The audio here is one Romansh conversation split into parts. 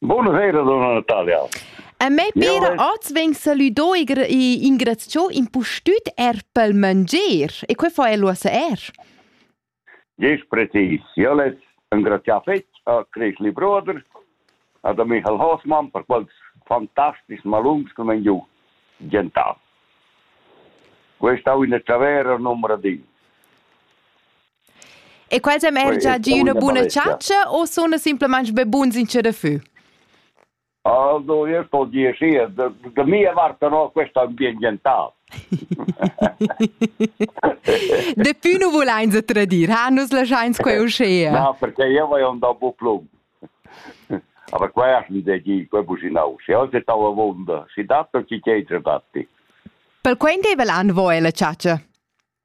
Bunasera donna Natalia. A me pera oz vegn saludo e ingraziò impustüt er pel mangier e que fa el uossa er. Ges precis. Io les engrazià fetg a Cresli Bruder, ad Michael Hoffmann per quels fantastics malungs che m'han giù gentà. Questa è una tavera numero 10. E quels han er già gi üna buna chatscha o suna simplamaing be buns in che da fü? Also, io sto dir sì, de, de mia parte no, questo è ambientale. Depuis nu vulains tradir, ha nus laschains quei uschea. No, perché io voglio andare a Buplum. Aber quella è da dire, quella businau. Se oggi ti avonda, si datto chi che hai dati. Per quanto è l'anno voi la ciaccia?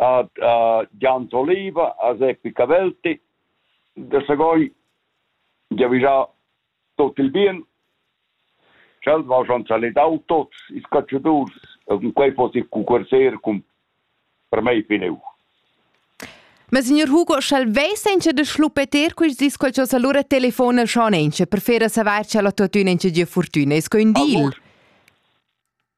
Ad Gianto Oliva, a Seppi Cavelti, da Sagogn giavischà tuot il bien. Sch'el va schon salidau tuots ils catschadurs e cun quei foss il cucurzer cun per mei fineu. Ma signor Hugo, sch'el vess encha da schlupeter quist dis qualchosa, lura telefona schon encha per fer a savair cha el ha tuottüna encha gia furtüna. Es que ün deal? Allura